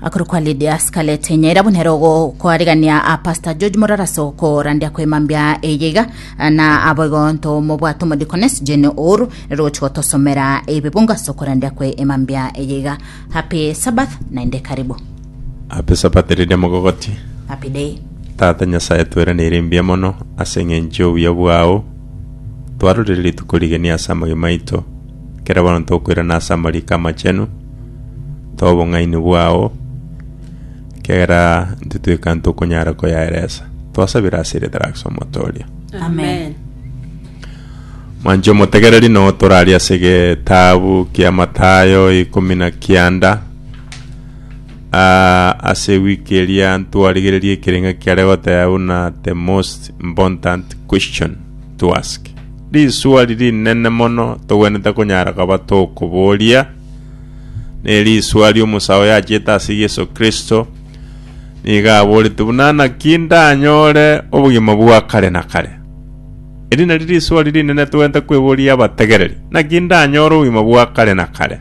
akoro kwa Lydia Scarlett Nyaira buna ero gokwarigania a Pastor George Moraraso korandia kwemambia eyeiga na aboigo nto mobwate omodikones Jane Ouru ero gochi gotosomera ebebungo ase okorandia kwe emambia eyeiga Happy Sabbath naende karibu Happy Sabbath riria mogogoti. Happy day Tata Nyasae tweranire mbuya mono ase eng'encho y'obuya bwao. Twarorire rituko rigeni ase amagima aito. Kera bono ntokoirana ase amariiko amachenu, tobong'aini bwao, ekiagera ntitweka ntokonyara koyaeresa. Twasabire ase eritera Yesu omoto oria. Amen. Mwanche omotegereri no toraria ase getabu kia Matayo ikomi na kianda Ah, ase wiki eria ntwarigereria ekerenga kiare goteba buna the most important question to ask. Risuali rinene mono togwenerete konyara koba tokoboria, nerisuali omosae oyo achiete ase Yeso Kristo nigo aborete buna naki ndanyore obogima bwa kare na kare. Eri nari risuali rinene togwenerete kweboria abategereri, naki ndanyore obogima bwa kare na kare?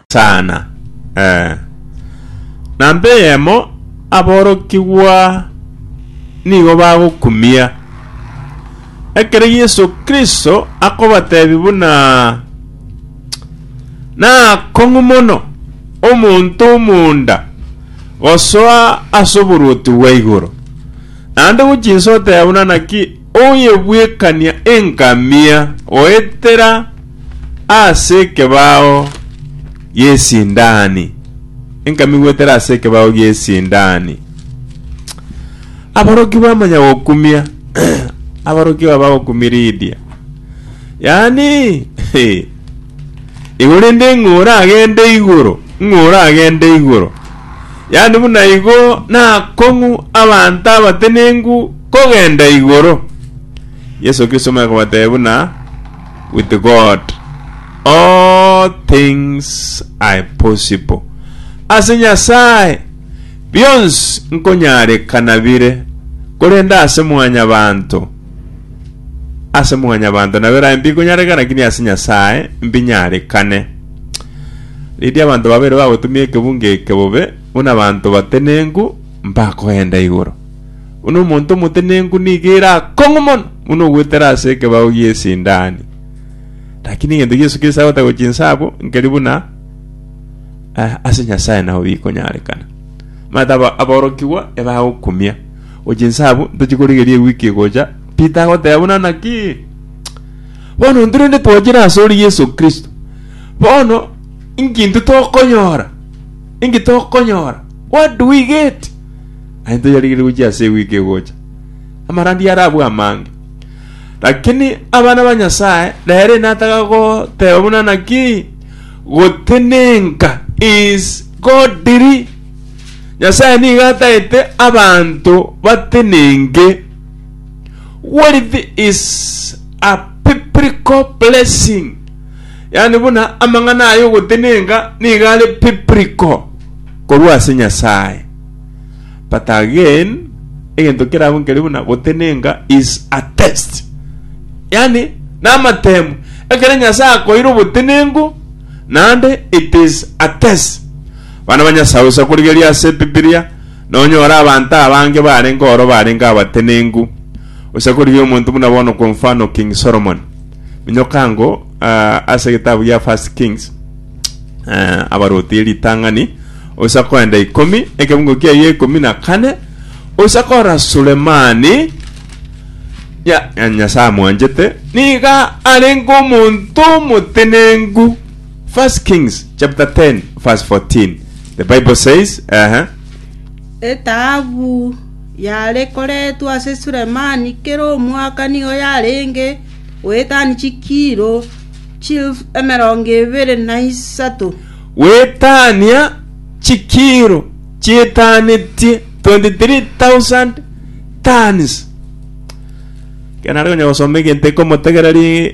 Saana, ee. Namba eyemo aborokigwa nigo bagokumia. Ekero Yeso Kristo akobatebia buna, Nakong'u mono omonto omonda gosoa as'oboruoti bwa igoro, naende gochia inse oteba buna naki, Oyebwekania engamia goetera ase ekebao gi'esindani. Engamia goetera ase ekebao gi'esindani. Abaroki bamanya gokumia. Abaroki aba bagokumia Lidia. Yaani, he. Igo rende ng'a oragende igoro, ng'a oragende igoro. Yaani buna igo nakong'u abanto abatenenku kogenda igoro. Yeso Kristo omanya kobatebia buna, With God all things are possible. Ase Nyasae bionsi nkonyarekana bire, korende ase mwanyabanto Ase mwanyabanto nabo erae mbikonyareka, lakini ase Nyasae mbinyarekane. Riria abanto babere bagotumia ekebunga eke bobe, buna abanto batenenku mbakoenda igoro. Buna omonto omotenenku nigo ere akong'u mono buna ogwetera ase ekebao gi'esindani. Lakini egento Yesu Kristo agotaka gochinsa abwo, nkeri buna eh, ase Nyasae nao bikonyarekana. Mata aba- aborokigwa ebagokumia O chinsa abwo, ntochie korigeria ewiki egocha, Peter agoteba buna naki? Bono intwe rende twachire ase ore Yeso Kristo, bono inki intwe tokonyora? Inki tokonyora? What do we get? Aye toyarigeria gochia ase ewiki egocha. Amarandia arabwo amange. Lakini abana ba Nyasaye nere nataga goteba buna naki? Gotenenka is godly. Nyasae nigo ataete abanto batenenke. Wealth is a biblical blessing. Yaani buna amang'ana aya ogotenenka nigo are biblical korwa ase Nyasae. But again, egento kerabo nkeri buna gotenenka is a test. Yaani namatemu. Ekero Nyasae akoeire obotenenku, naende it is a test. Bana ba Nyasae osa korigeria ase Ebibilia, nonyore abanto abange barenge oro barenge abatenenku. Osa korigia omonto buna bono kwa mfano King Solomon. Minyoka ango ah, ase egetabu gia First Kings eh, abarotie ritang'ani osa koenda ikomi ekebungo kiaye ekomi na kane osa korora Sulemani ya, ya nyasae amwanchete niga arenge omonto omotenenku First Kings chapter 10 verse 14. The Bible says, ehe, Etaabu yare koretwa ase Sulemani kera omwaka nigo yarenge goetania chikiro chilfu emerongo ebere na isato. wetania chikiro chietanetie 23,000 tons. Kenare konya gosoma egento ekomotegereria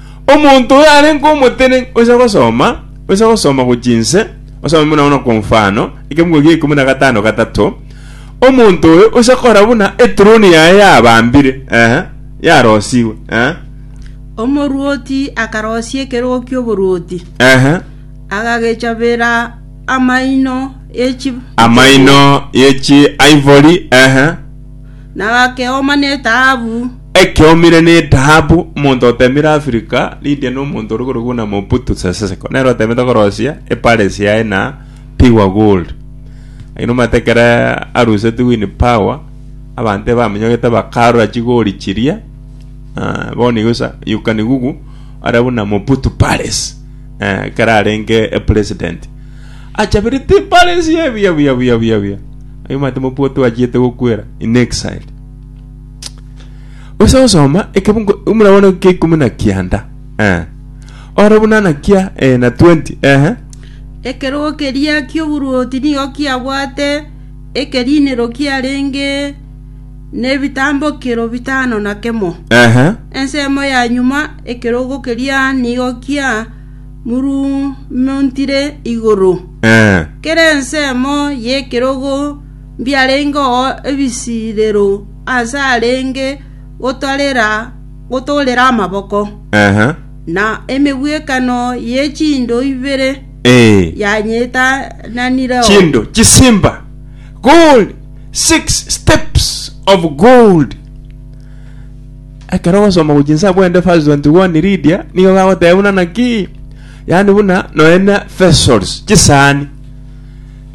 Omonto oyo arenge omotenenku oise gosoma, oise gosoma gochia inse, osome buna bono kwa mfano, ekemugo gia ikomi na gatano gatato, Omonto oyo oise kora buna etroni yaye yabambire, ehe, yarosigwe, ehe, Omorwoti akarosia ekerogo ki'oborwoti, ehe, agagechabera amaino ye chi- amaino ye chi-ivory, ehe, na akeoma netahabu. Ekeomire netahabu, omonto otemire Africa, Lydia na omonto ore korokwo buna Mobutu Sese Seko, nere otemete korosia epares yaye na pure gold. Lakini omanyete ekero arusetie Winnie Power, abanto ebaminyogete bakarora chigori chiria, ah, bono igo sa, you can google, ore buna Mobutu Palace, eh, ekero arenge president. Achabire timbare sie buya buya buya buya buya. Aye mate mopua twachiete gokwera in exile. Ose osoma ekebungo umura bono kia ikumi na kianda. Eh. Ore buna na kia eh, na 20. Eh. Ekerogo keria ki'oboruoti nigo kiabwate ekerinero kiarenge nebitambokero bitano na kemo. Eh. Ensemo ya nyuma ekerogo keria nigo kia murumontire igoro. Kera ensemo y'ekerogo mbiarengeo ebisirero aase arenge gotoorera amaboko, na emegwekano ye chindo ibere yanyetananireo. Ekero ogosoma gochia inse abwo inde verse 21 Lydia nigo gagoteba buna naki? Yaani buna nonya na vessels, chisaani.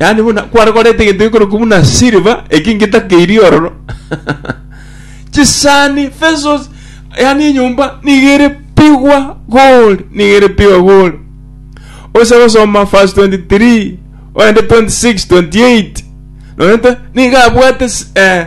Yaani buna kware koreta egento gekorokwa buna silver eki ngetakeirie ororo. chisaani, vessels, yaani enyomba nigo ere pigwa gold, nigo ere pigwa gold. Oise gosoma verse 23, oende 26, 28. Nonya te- nigo abwate s- eh,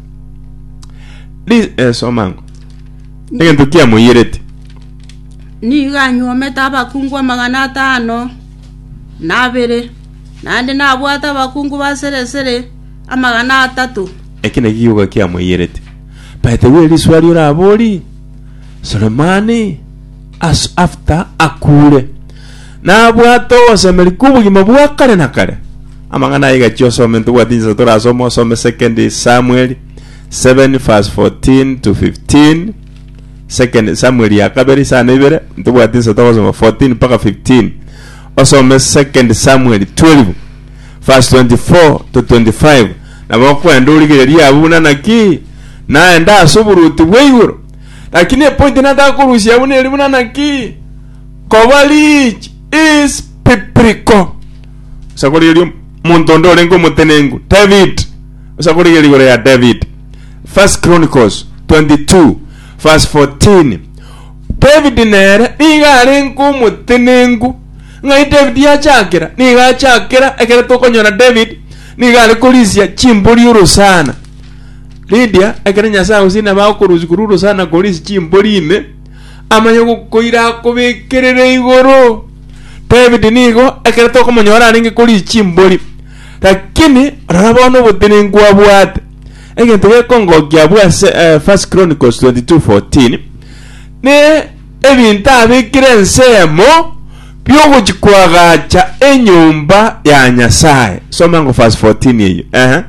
Ri- eh, soma ango egento kiamoiyerete Nigo anyuomete abakungu amagana atano na abere, naende nabwate abakungu ba sere sere amagana atato. eki naki gioka kiamoiyerete baeterwe eriswa ria orabori soremani as after akure nabwate ogosemeria kw'obogima bwa kare na kare Amang'ana aya gachia osome ntobwati inchesa torasome osome second Samuel 7 verse 14 to 15 second Samuel ya kabere isano ibere ntobwati inchesa togosoma 14 mpaka 15 osome second Samuel 12 verse 24 to 25 nabo okwenda origereria abwo buna naki naende ase oboruoti bwa igoro lakini epointi nataka korusia abwo neri buna naki koba rich is biblical osakore erio omonto onde orenge omotenenku david osakore erio igoro ya david first chronicles 22 verse 14 david nere nigo arenge omotenenku ng'ai david yachakera nigo achakera ekero tokonyora david nigo are korisia chimbori orosana Lydia ekero nyasaye gose nabo akorusia korwa orosana korisia chimbori ime Amanye ogokoira akobekerere igoro. David nigo ekero tokomonyora arenge koria chimbori, lakini rora bono obotenenku abwate. Egento gekongokia abwo ase First Chronicles 22:14, ne ebinto abekire ensemo biogochia koagacha enyomba ya Nyasae. Soma ngo verse 14 eyio, eeh.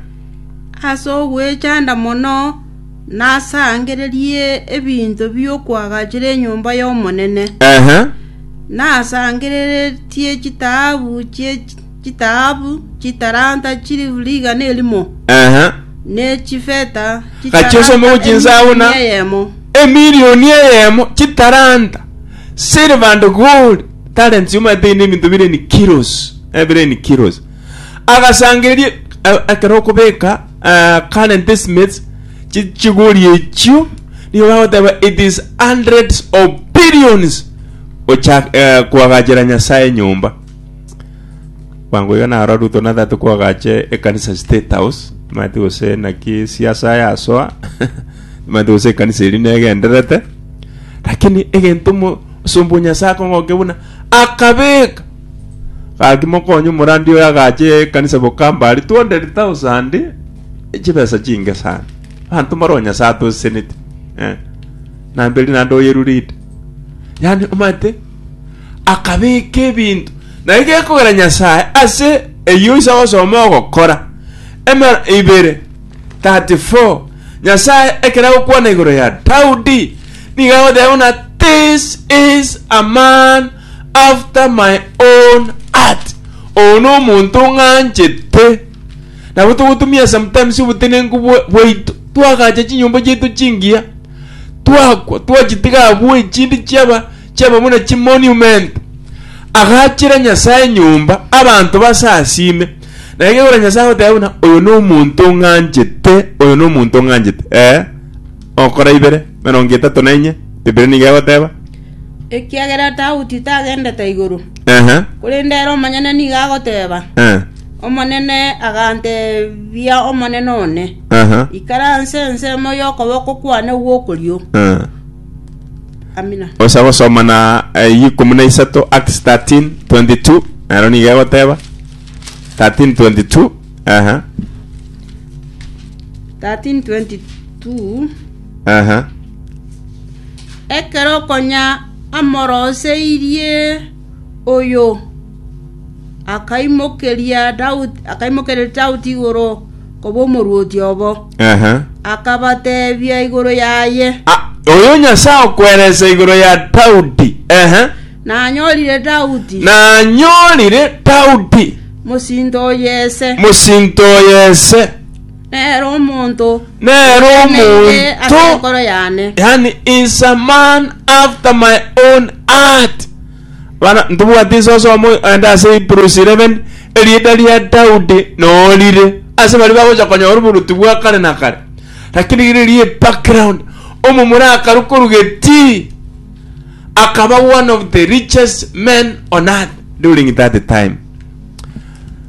Ase ogwechanda mono nasangererie ebinto bi'okwagachera enyomba y'Omonene, Ehe. nasangereretie chitaabu chie chitaabu chitaranta chilifu rigana erimo, Ehe. ne chifeta Gachieso chitaranta mogo chinsabu na emilioni eyemo. emilioni eyemo chitaranta silver and gold talents yomanyete inde ebinto bire in kilos eh, bire in kilos Agasangereria e- ekero okobeka eh, current estimates chi- chigori echio nigo bagoteba it is hundreds of billions gochak eh, koagachera nyasaye enyomba bwango iga naro ruto natagete koagache ekanisa state house mati gose naki siasa yasoa mati gose ekanisa eri negenderete lakini egento mo osomba o nyasaye akong'oke buna akabeka Gaki mokonye omorandia oyo agacha ekanisa bokamba aria 200,000 chibesa chinge sana. Banto mbaro Nyasae atosesenete. Eh. Namberi nande oyerurite. Yani omate akabeka ebinto na igekogera Nyasae ase eyo isa osoma ogokora. Ema ibere 34 Nyasae ekera gokwana igoro ya Daudi niga agoteba na this is a man after my own heart oyo nomonto ng'anchete nabo togotumia sometimes obotenenku bwa- bwaito twagacha chinyomba chiaito chingiya twakwa twachitiga abwo echindi chiaba chiaba buna chimonument agachera nyasaye nyomba abanto base asime na ekegora nyasaye agoteba buna oyo nomonto ng'anchete oyo nomonto ng'anchete eh okora ibere erongo etato na enye bibiri nigo egoteba Ekiagera Daudi tagendete igoro, Ehe. korende ere omonyene nigo agoteba, Eh. Omonene aganteebia Omonene one, Aha. Ikara nse ensemo y'okoboko kwane gw'okorio. Eh. Amina. osa gosoma na eh, ikomi na isato acts 13 22 nero niga egoteba 13 22 aha 1322 Aha. Ekero konya amoroseirie oyo, akaimokeria Daudi, akaimokereria Daudi igoro koba omorwoti obo, Aha. akabateebia igoro yaye, Ah, oyo Nyasae okweresa igoro ya Daudi. Aha. nanyorire Daudi Nanyorire Daudi mosinto oyese, mosinto oyese. Nere omonto Nere oteneine ase omonto- enkoro yane. yani is a man after my own heart bana ntibwati nse osoma ande ase hebrews 11 erieta ria daudi norire ase baria bagocha konyora oboruti bwa kare na kare lakini riria ebackground omomura akarwa korwa getii akaba one of the richest men on earth during that time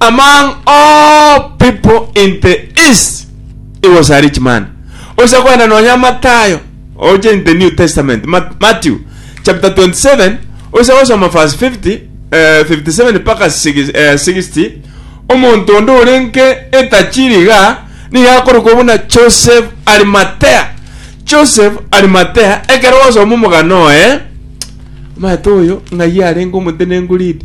Among all people in the East, he was a rich man. Ocha koenda nonya Matayo, oche in the New Testament, Ma- Matthew chapter 27, ocha gosoma verse 50, eh, 57 mpaka 60, eh, 60. Omonto onde orenge etachiri iga, nigo akorokwa buna Joseph Arimatea. Joseph Arimatea, ekero gwasoma omogano oye, omanyete oyo ng'ai arenge omotenenku ridi.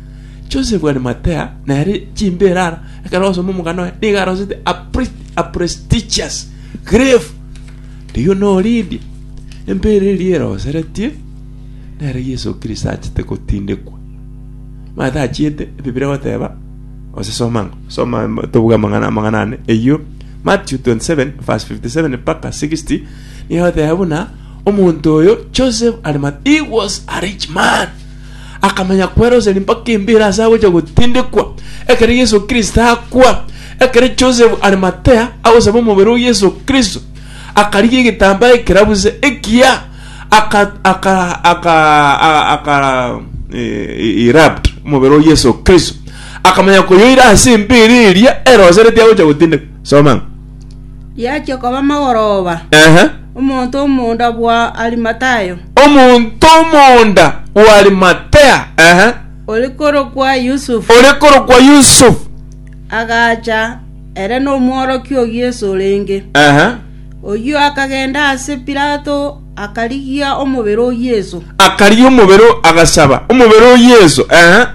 Joseph Arimatea nere chimbere ara ekero osoma omogano oye nigo arosete a, pre- a prestigious grave rigo norindi empere eria eroseretie nere yesu kristo achete gotindekwa mata achiete ebibira goteba ose soma ng'a soma em- tobuge amang'ana amang'ana ane eyio matthew 27 verse 57 mpaka 60 nigo egoteba buna omonto oyo joseph Arima- he was a rich man akamanya kweroseri mpaka embeera ase agocha gotindekwa, ekero Yeso Kristo akwa, ekero Joseph Arimatea agosaba omobere o Yeso Kristo, akarigia egetambaa ekerabuse ekiya, aka aka aka a- aka eh, wrapped omobere o Yeso Kristo, akamanya koyoira ase embeera eria erosereti agocha gotindekwa. Soma. Riachia koba amagoroba, omonto omonda bwa Arimathaya, omonto omonda bw'Arimathea, ore korokwa Yusufu, ore korokwa Yusufu, agacha, ere nomworokia o Yesu orenge. Oyio akagenda ase Pilato, akarigia omobere o Yesu. akarigia omobere, o- agasaba omobere o Yesu.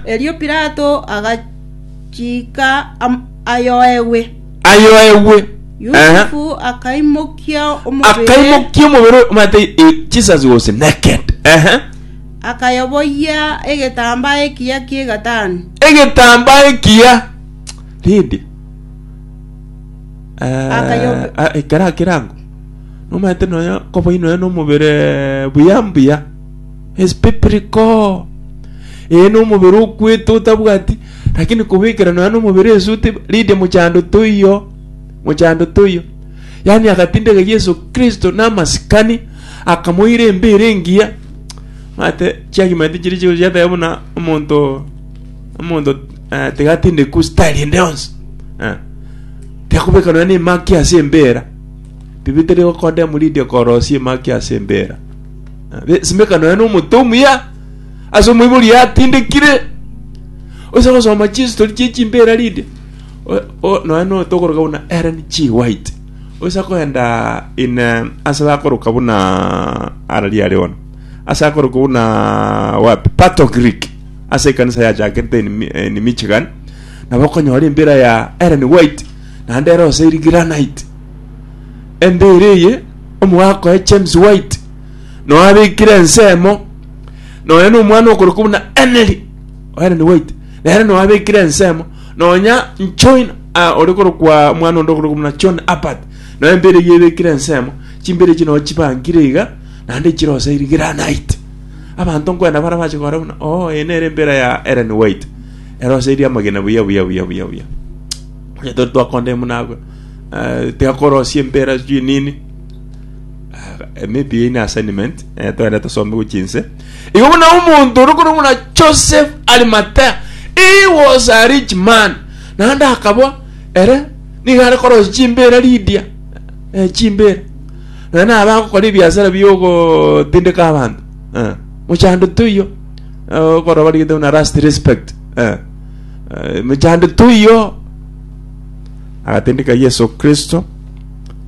Erio Pilato agachika am- ayoegwe. ayoegwe. Aha. Yusufu akaimokia omobere, Akaimokia omobere omanyete eh, Jesus was naked. Aha. akayoboyia egetambaa ekiya ki'egatani. Egetambaa ekiya. Rindi. Akayobe- Ah, ah, ekera kirango. Nomanyete noyo koboi noyo nomobere buya mbuya. Is pipiriko. Ee nomobere okwete otabwati Lakini kobekera nonya nomobere esuti, Lidia mochando toiyo, mochando toiyo. Yaani agatindeka Yeso Kristo namasikani, akamoira embeera engiya. Mate chiagimenti chiria chigochia chiateba buna omonto omonto eh, tigatindekwa style ende yonsi. Eh. Tiakobeka nonya nemaki ase embeera. Bibi teri gokondemu Lidia korosia emaki ase embeera. Eh, be- Simeka nonya nomoto omuya, Ase omoibori atindekire oise gosoma chistori chie chimbera rinde o- o- nonya no tokoroka buna Ellen G. White oise akoenda in eh, ase bakoroka buna arari are bono ase akoroka buna wapi Pato Creek ase ekanisa yachakete in, Mi- in Michigan nabo okonyora embira ya Ellen White naende ere ose eri granite embere eye omogakoe James White noabekire ensemo nonya nomwana okorokwa buna Emery Ellen White nere nonya abekire ensemo nonya Nchoina ah, ore korokwa mwana onde okorokwa buna John Abbott nonya empira eyio ebekire ensemo chimpira echi nonya chibankire iga naende chirosairi granite abanto nkwenda bara bache kora buna oh eye nere empira ya Ellen White erosairi amagena buya buya buya buya buya onye tori twakonde buna agwo eh, tiga korosia empira sijui nini maybe ine assignment eh, twende tusome gochia inse igo buna omonto ore korwa buna joseph arimatea he was a rich man naende akabwa ere nigo are korosia chimbera lidia eh, chimbera naye nabe agokora ebiasara biogotindeka abanto eh, mochando toiyo eh, okorwa barigete buna last respect eh, eh, mochando toiyo agatindika yesu kristo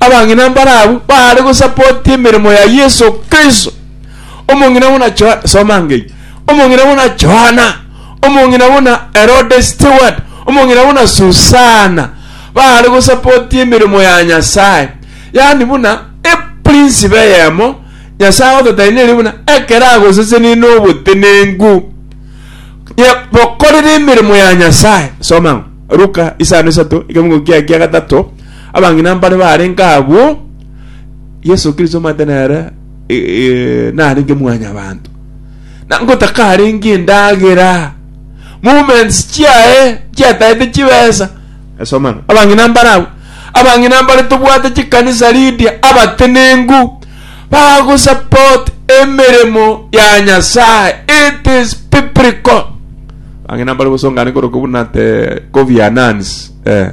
Abang'ina mbare abwo baare gosapotia emeremo ya Yeso Kristo. Omong'ina buna Johana, soma ngei, omong'ina buna Johana, omong'ina buna Herode Stewart, omong'ina buna Susana, baare gosapotia emeremo ya Nyasae. Yaani buna eprinsipe eyemo Nyasae ototainirie buna ekero agosesenirie n'obotenenku. Ye- Bokorere emeremo ya Nyasae. Soma Luka isano isato, ekemungo kiaye kia gatato, Abang'ina mbare barenge agwo, Yeso Kristo omanyete nere narenge mwanyabanto, na ngotakarenge endagera, movements chiaye chiatagete chibesa. Esoma ng'a abang'ina mbare agwo, abang'ina mbare tobwate chikanisa Lydia abatenenku bagosupport emeremo ya Nyasaye. It is biblical. Abang'ina mbare gosongane korokwa buna te Kofi Annans, eh.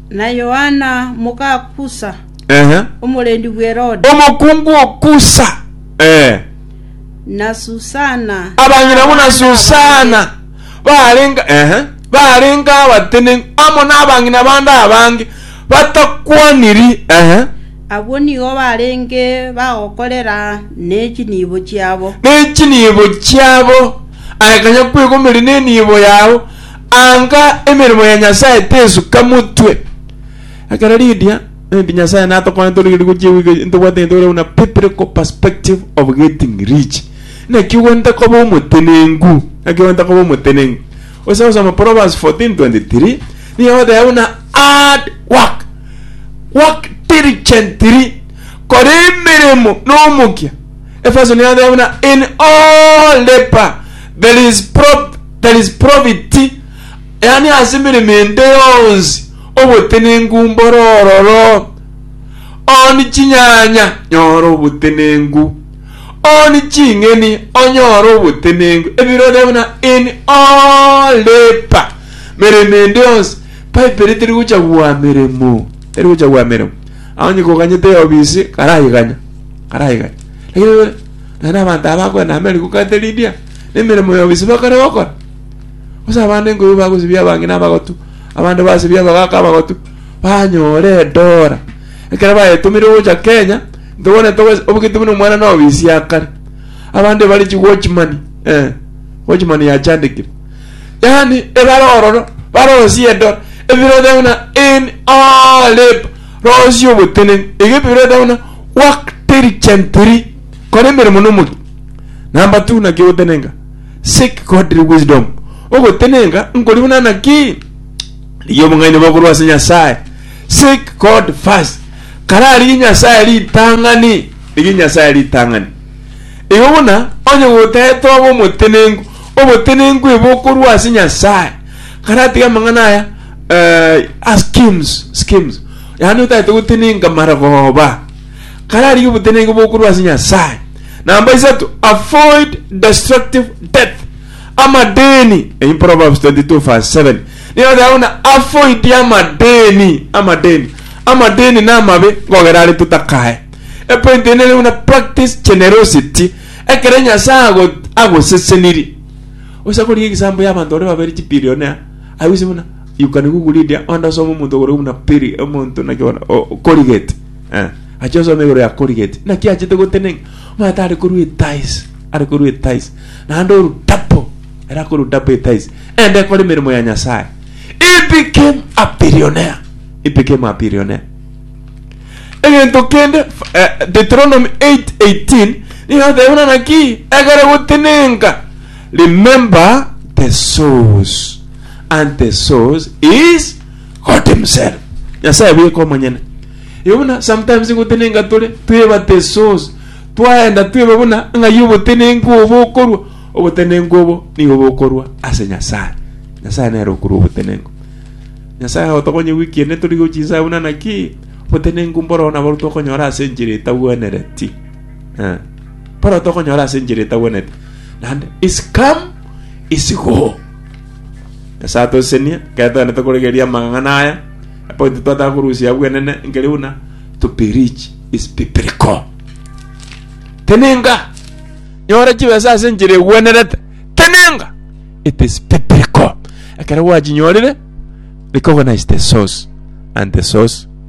Na Yohana moka Kusa, Ehe. omorendi bw'Herode, Omokungu o Kusa. Eh. na Susana. Abanyina buna abana Susana abange. barenga ehe barenga abatenenku amo nabang'ina bande abange batakwaniri ehe Abwo nigo barenge bagokorera ne chinibo chiabo. ne chinibo chiabo aye kanya kwegomeria nenibo yao Anga emeremo ya Nyasae tesuka motwe. Ekero Lydia, Maybe Nyasae natokone tore riria gochia ewigo eye, ntobwate egento kere buna biblical perspective of getting rich. Naki ogwenta koba omotenenku, naki ogwenta koba omotenenku. Ose gosoma Proverbs 14:23, nigo egoteba buna hard work, work diligently, kora emeremo nomokia. Efeso nigo egoteba buna in all labour there is pro There is profit, yaani ase emeremo ende yonsi obotenenku mborororo. On chinyanya, nyora obotenenku. On ching'eni, onyora obotenenku. Ebirore buna in all labor, meremo ende yonsi. Bible teri gocha gwa meremo, teri gocha gwa meremo. Aonye koganyete eobisi, karaiganya, karaiganya. Lakini naende abanto aba bakoenda America, ukateridia, nemeremo ya obisibe bakare gokora. Gose abande nkoibo bagosibia abange na abagotu, abande basibia abagaka abagotu, banyore edora. Ekero bayetomire gocha Kenya, ntogone togo- obogete buna omwana na obisia akare. Abande bare chi watchman, eh, watchman yachandekire. Yaani ebare ororo, barosie edora, ebirote buna in all labour, rosie oboteneni, egebirote buna work diligently. Kora emeremo nomori, na mbatu naki ogotenenka, seek godly wisdom, ogotenenka nkori buna naki? Rigia obong'aini boo korwa ase Nyasae, seek God first, kare arigie Nyasae ritang'ani, rigia Nyasae ritang'ani. Igo buna onye gotaete obe omotenenku, obotenenku ebe okorwa ase Nyasae, kare atige amang'ana aya eh, ah, schemes, schemes, yaani otaete gotenenka mara goba kararigie oboteneneke bokorwa ase Nyasae. Namba isato, avoid destructive death. Amadeni, in Proverbs 22 verse 7. Nigo ateba buna avoid amadeni, amadeni. Amadeni na amabe ngogera are totakae. E point ende ere buna practice generosity. Ekero Nyasae ago agoseseniri. Osa korigia egisambo ya abanto bare babere chibillionaire. Aye ase buna you can google it onde osome omonto ogorwa buna biri omonto naki bono o- o- Colgate. Eh, achia osome igoro ya Colgate. Naki achete gotenenga. Omwana tare korwa etice. Are korwa etice. Naende oru double. Era korwa double etice. Ende kore emeremo ya Nyasaye. He became a billionaire. He became a billionaire. Egento kende f- eh, Deuteronomy 8:18 nigo ateba buna naki ekero gotenenga. Remember the source. And the source is God himself nyasaye abweka omonyene igo buna sometimes ngotenenka tore twebatisos twaenda tweba buna ng'ai obotenenku obo bokorwa obotenenku obo nigo bokorwa ase nyasaye nyasaye nere okorwa obotenenku nyasaye otokonye wiki ende tori gochia inse buna naki obotenenku mboro nabo tokonyora ase enchera etagwenereti eh mboro tokonyora ase enchera etagwenereti naende is come is go Nyasae atosesenie, ekero togenderete koregereria amang'ana aya, epointi twataka korusia bwenene nkeri buna to preach is biblical. Tenenga, nyora chibesa ase enchera egwenerete, tenenga, it is biblical. Ekero gwachinyorire, recognize the source and the source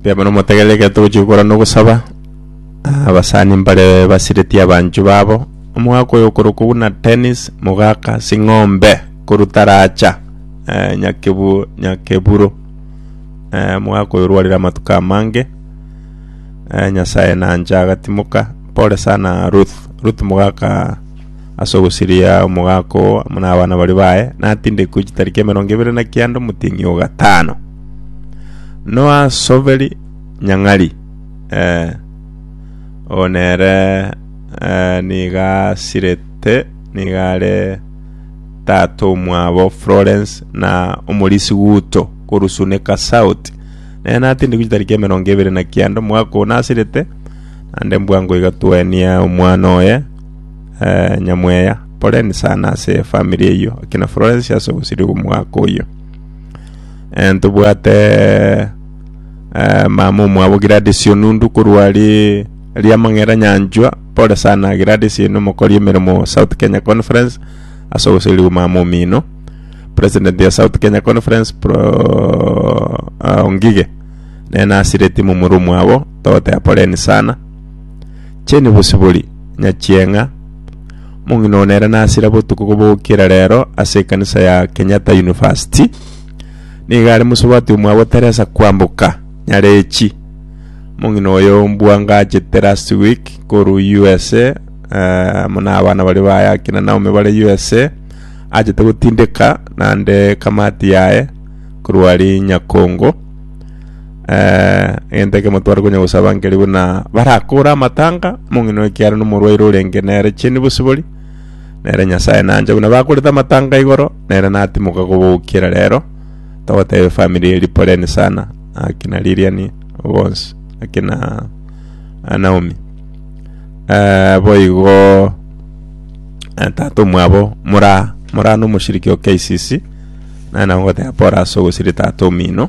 Mbuya mono motegerere ekero togochia gokora na ogosaba Ah, abasani mbare basiretie abanchwa babo omogaka oyo okorokwa buna Dennis Mogaka Sing'ombe korwa Taracha eh, Nyakebu Nyakeburo eh, omogaka oyo orwarire amatuko amange eh, Nyasaye nanche agatimoka pole sana Ruth Ruth Mogaka ase ogosiria omogaka oo amo nabana baria baye, natindekwe chitari ki'emerongo ebere na kianda omoting'i o gatano. Noasoberi nyang'ari, ee, oo nere ee, niga asirete, niga are tata omwabo Florence na omorisi Guto korwa Sunika South. Nere natindekwe chitari ki'emerongo ebere na kianda omogaka oo nasirete, naende mbwango iga twaenia omwana oye, nyamweya. Poleni sana ase efamiri eyio, ekina Florence ase obosiri bw'omogaka oyio. Ntobwate mama omwabo Gladys Onundu korwa aria Riamang'era nyanchwa, pore sana Gladys ere nomokori emeremo South Kenya Conference ase oboseri bwa mama omino. President ya South Kenya Conference pro Ngige nere nasireti momura omwabo, togotea poleni sana. Cheni bosibori, Nyachieng'a, mong'ina one ere nasira botuko kobokera rero ase ekanisa ya Kenyatta University. Nigo are mosubati omwabo Teresa Kwamboka, Nyarechi. Mong'ina oyo mbwangachete last week koru USA, eh, amo na abana baria baye akina Naomi bare USA, achete gotindeka nande kamati yaye korwa ari Nyakongo. eh, egento ekemo tware konya gosaba nkeri buna barakore amatanga omong'ina ekiara nomorwaire orenge nere cheni bosibori nere nyasaye nancha buna bakorete amatanga igoro nere natimoka kobokera rero togotebe family eri poleni sana akina liliani bonsi akina ah, naomi eh, boigo eh, tata omwabo mora mora nomoshiriki o KCC nana ngoteba pora ase ogosiri tata omino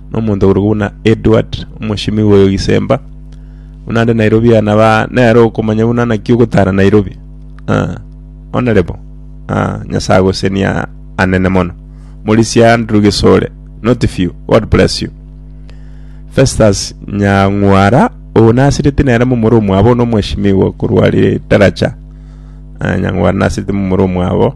nomonto okorokwa buna Edward omoshimi oyo gisemba buna ande Nairobi aya naba nere okomanya buna naki ogotara Nairobi ah, honorable ah, nyasaye agosenia anene mono morisi Andrew Gisore not few God bless you Festus Nyang'wara oyo nasireti nere momoro omwabo nomweshimiwa korwa Literature ah, Nyang'wara nasireti momoro omwabo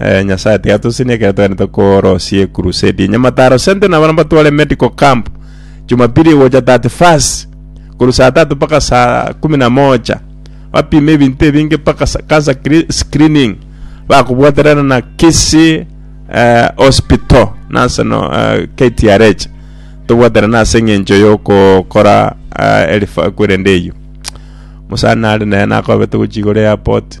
Eh, nyasaye tigatosinie ekero togende korosia ekurusedi enyamataro sente nabana batware medical camp jumapili gocha 31 koru saa tatu mpaka saa kumi na moja bapime ebinto ebinge mpaka sa- cancer cre- screening bakobwaterana na kisi eh, hospital nase no eh, ktrh tobwaterana ase eng'encho yokokora eh, erifa kwerende eyio mosani nare naye nakobe togochia igoro ya airport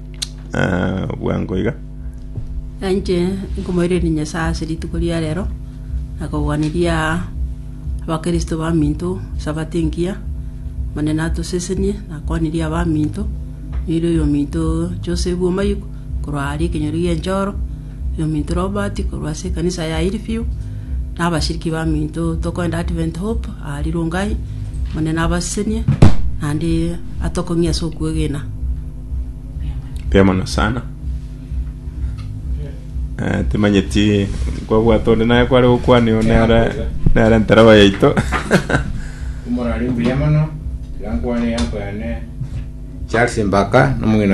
Ah, bwango iga. Nainche nkomoirereria Nyasae ase rituko ria rero na kogwaniria abakristo baminto Sabato engiya. Omonene atosesenie na akwanirie abaminto, yoire oyominto Joseph Omayuku korwa aria ekenyoro gi'enchoro, oyominto Robert korwa ase ekanisa ya Hillview, na abashiriki baminto tokorenda Advent Hope aria Rongai. Omonene abasesenie naende atokong'ie ase okwegena. Mbuya mono sana. Eh, timanyeti kwabwata onde naye kware gokwania one are nere ntereba yaito. Omorari mbuya mono, tiga nkwane yanko yane. Charles Mbaka, nomong'ina